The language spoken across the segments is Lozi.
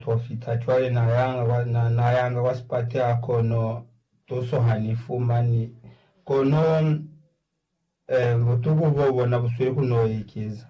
Profita, Cwale na yanga kwa, na, na yanga kwa sipateha kono tuso ha ni fumani. Kono, eh, butuku bo bona bu sweli ku no ekeza.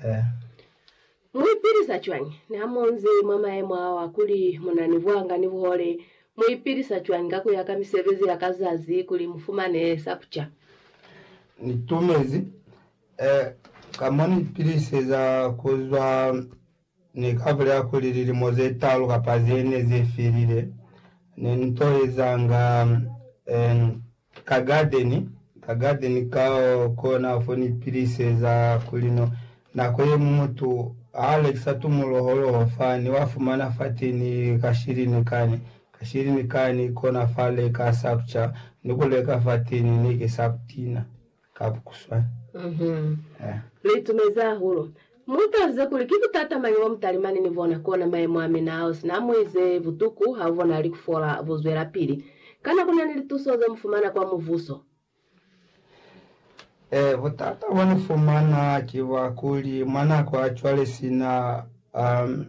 Eh. Mu ipilisa cwañi niha mu nzi mwa mayemo ao a kuli mu na ni buhanga ni buhole? Mu ipilisa cwañi ka ku ya ka misebezi ya ka zazi kuli mu fumane sa ku ca? Ni tumezi, eh, ka mo ni ipiliseza ku zwa Ni ka bulela kuli lilimo ze talu kapa ze ne ze felile, ne ni to ezanga en ka gadeni, ka gadeni ka kona fo ni piliseza kuli no. Nako ye ñwi mutu ha a lekisa tumuloholoho fa, ni wa fumana fateni ka shilini kani, ka shilini kani, kona fa leka sakucha, ni ku leka fateni, neke sakutina. ka bukuswa. Lu itumezi hahulu. Mu taluze kuli ki butata mañi bo mu talimani ni bona, kona mayemo a mina ao sina mu ize butuku ha bu bonahali ku fola bu zwelapili. Kana ku na ni lituso ze mu fumana kwa muvuso? Ee, butata bo ni fumana ki bwa kuli mwa nako ya cwale sina, um,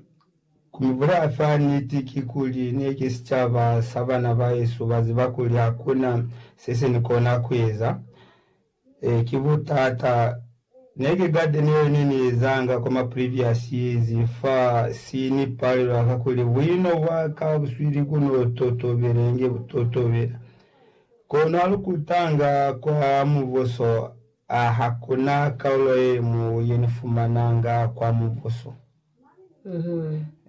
Ku ibulaya fa niti ki kuli, ne ki sicaba sa bana ba hesu ba ziba kuli ha ku na se se ni kona ku eza. Ee, ki butata. Ne ki garden yeo ne ni ezanga kwa ma previous years fa si ni palela ka kuli buino bwa ka buswili ku no totobela inge bu totobela. Kono ha lu kutanga kwa Mubuso, a ha ku na kaulo ye ñwi ye ni fumananga kwa Mubuso.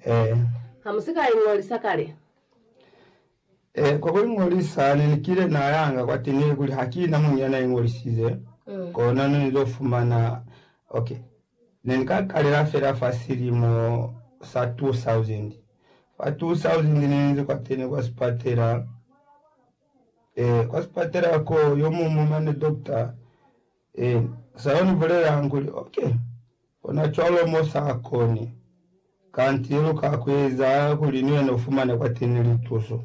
Ee. Ha mu si ka iñolisa kale? Ee, kwa ku iñolisa ne ni kile na yanga kwateñi, ilikuli ha ki na muñwi ya na iñolisize, kona ne ni zo fumana. Ok. Ne ni ka kalela fela fa silimo sa 2000. Fa 2000 ne ni ze kwateni kwa sipatela. Ee, kwa sipatela ko, yo muñwi mane dokta Ee, sa yo ni bulelanga kuli, ok, kona cwalo mo sa koni, kanti lu ka kueza kuli ni wena ufumane kwateni lituso.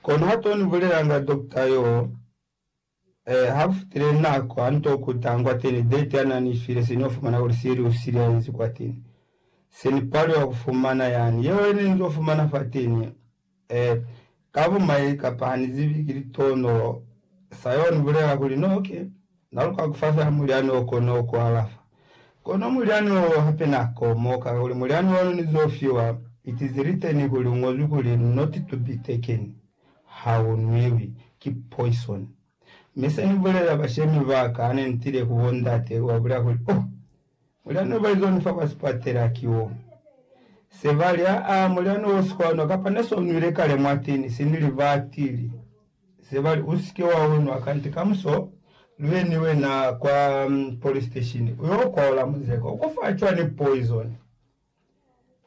Kono ha to ni bulelanga dokta yo, eh, ha ku fitile nako, ha ni to kutanga kwateni date ya na ni file, se ni yo fumana kuli se lu silaezi kwateni. Se ni paliwa kufumana yani yeo ye ne ni zo fumana fateni. Ee, ka bumai, kapa ha ni zibi, ki litono. Sa yeo ni bulela kuli no ke na luka ku fa fela mulyani o kono ku alafa. Kono mulyani wo hape na komoka, kakuli mulyani ono ni zo fiwa iti zi li teni ku li ñozwi kuli, Not to be taken, ha u nwiwi, ki poison. Mi se Ni bulelela bashemi ba ka hane Ni tile ku bo ndate, ku ba bulela kuli, Oh, mulyani o ba izwa ni fa kwa sipatela ki wo. Se ba li, Aa, mulyani wo si kwa nwa, kapa ne so nwile kale mwa tini, si ni li batili. Se ba li, U si ke wa u nwa, kanti kamuso lu ye ni wena kwa polisiteshini, u yo kwaola muzeko. U ko fa cwani poizoni?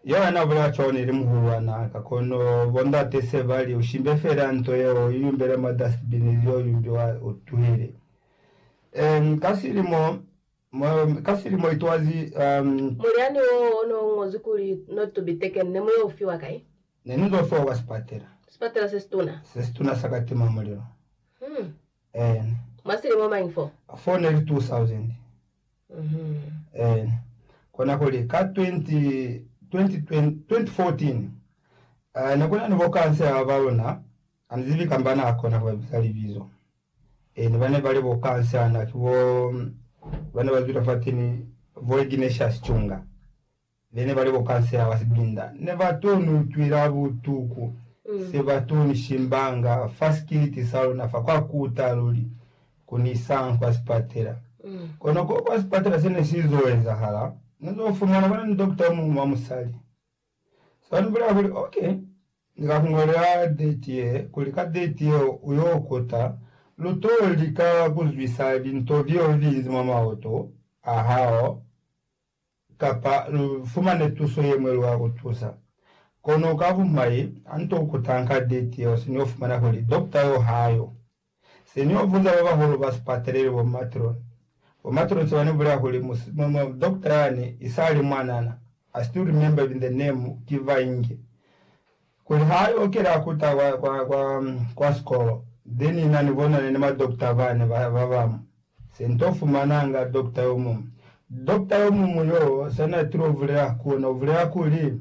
Yohane a bulela John ili muhulwana ka kono bo ndate se ba li, U shimbe fela nto yeo u iyumbele mwa dustbin ili yo yumbiwa u tuhile. Um, ka silimo, um, ka silimo it was, um, Mulyani wo o no ñozwi kuli, Not to be taken, ne mu yo fiwa kai? Ne ni zo fiwa kwa sipatela. Sipatela se situna. Se situna sa katimamulilo. Hmm. Eena. Mwa silimo mañi fo? Fo ne li 2000. Mm-hmm. Eena. Kona kuli, ka 20, 20, 2014, uh, ne ku na ni bo kansela ba ba luna, ha ni zibi kamba na kona ku ba biza libizo. E, ne ba ne ba li bo kansela na, ki bo ba ne ba zwile fateni, bo Ignatius Chunga. Be ne ba li bo kansela ba sibilinda ne ba to ni utwila butuku se ba to ni shimbanga fa sikiliti sa luna fa kwa kuta luli ku ni isa kwa sipatela. Kono ko kwa sipatela se ne si zo ezahala, ne zo fumana ba na ni dokita o muñwi wa musali. Se ba ni bulela kuli, Ok, ni ka ku ñolela deti ye, kuli ka deti yeo u yo kuta, lu to lika ku zwisa linto leo linzi mwa maoto a hao. Kapa lu fumane tuso ye ñwi lwa ku tusa. Kono ka bumai, ha nto u kutanka ditio, se ni yo fumana kuli dokta yo ha yo. Se ni yo buza ba bahulu ba sipatela ili bo matron. Bo matron se ba ni bulela kuli, Dokta yani, isali mwanana, I still remember even the name, ki Vainge. Kuli ha yo kela kuta kwa, kwa, kwa, kwa sikolo, be ni na ni bonane ni ma dokta bane ba, ba bamu. Se nto fumananga dokta yomuñwi. Dokta yomuñwi yoo, sa na tilo bulela ku ona, u bulela kuli,